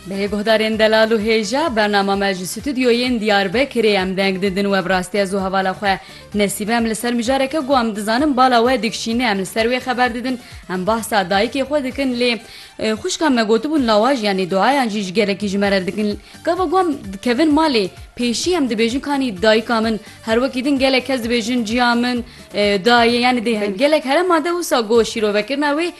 Bê guhdarên delal û hêja, bernama me ji stûdyoyên Diyarbekirê em deng didin we bi rastî ez û hevala xwe Nesîbe em li ser mijareke ku em dizanin bala we dikşîne em li ser wê xeber didin em bahsa dayikê xwe dikin lê xwişka me gotibûn lawaj yanî duayan jî ji gelekî ji me re dikin gava ku em dikevin malê pêşî em dibêjin kanî dayika min her wekî din gelek kes dibêjin ciya min dayê yanî dê gelek herema de wisa got şîrovekirina wê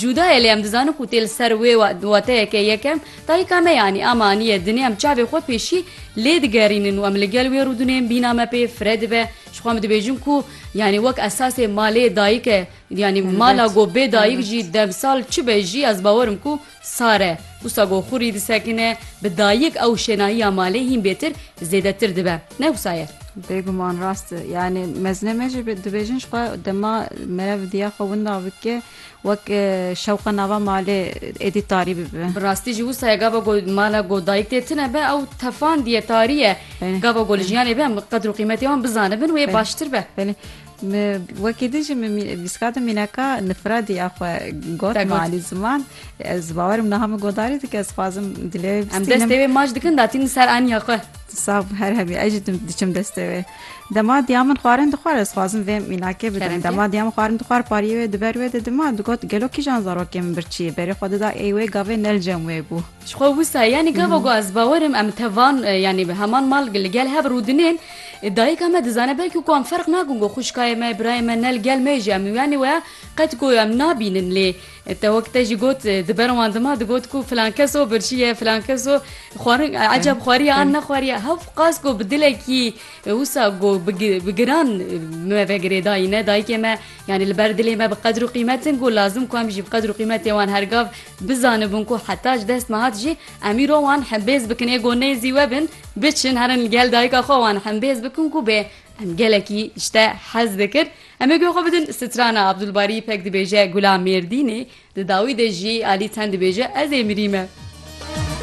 Cuda ye lê em dizanin ku tê li ser wê wateyeke yekem dayika me yanî a me aniye dinê em çavê xwe pêşî lê digerînin û em li gel wê rûdinên bîna me pê fire dibe jixwe em dibêjin ku yanî wek esasê malê dayik e yanî mala go bê dayik jî demsal çi be jî ez bawer im ku sar e wisa go xurî disekine bi dayik ew şênahiya malê hîn bêtir zêdetir dibe. Ne wisa ye. Bêguman rast e. Yanî mezine me jî dibêjin ji xwe dema merev diya xwe winda bike wek e, şewqa nava malê êdî tarî bibe. Bi rastî jî wisa ye gava ku mala ku dayik tê tune be ew tefandî ye, tarî ye. Gava ku li jiyanê be em qedr û qîmetê wan bizanibin wê baştir be. Belê. Mi wekî di jî min vîska di mîneka nifradî ya xwe got ma alî ziman ez bawerim niha min godarî dike ez xwazim dilê wê em destê wê maç dikin datîn ser aniya xwe sav her hebî ez jî diçim destê wê dema diya min xwarin dixwar ez xwazim vê mînakê bidim dema diya min xwarin dixwar pariyê wê diber wê de dima digot gelo kîjan zarokê min birçî berê xwe dida ey wê gavê nelcem wê bû Ji xwe wisa yanî gava ku ez bawer im em tevan yanî bi heman mal li gel hev rûdinên. Dayika me dizane belkî ku em ferq nakin ku xwişkayê me, birayê me ne li gel me jî em yanî weya qet ku em nabînin lê te wek te jî got di ber wan dima digot ku filan kes o birçiye, filan kes o xwarin ecab xwariye an nexwariye hev qas ku bi dilekî wisa ku bi giran me vegirê dayîne dayikê me Yanî li ber dilê me bi qedir û qîmet in ku lazim ku em jî bi qedir û qîmetê wan her gav bizanibin ku heta ji dest me hat jî em îro wan hembêz bikin ê ku nêzî we bin biçin herin li gel dayika xwe wan hembêz bikin ku bê em gelekî ji te hez dikir em ê guh xwe bidin strana Abdulbarî pek dibêje Gula Mêrdînê di dawî de jî alî çend dibêje ez ê mirî me.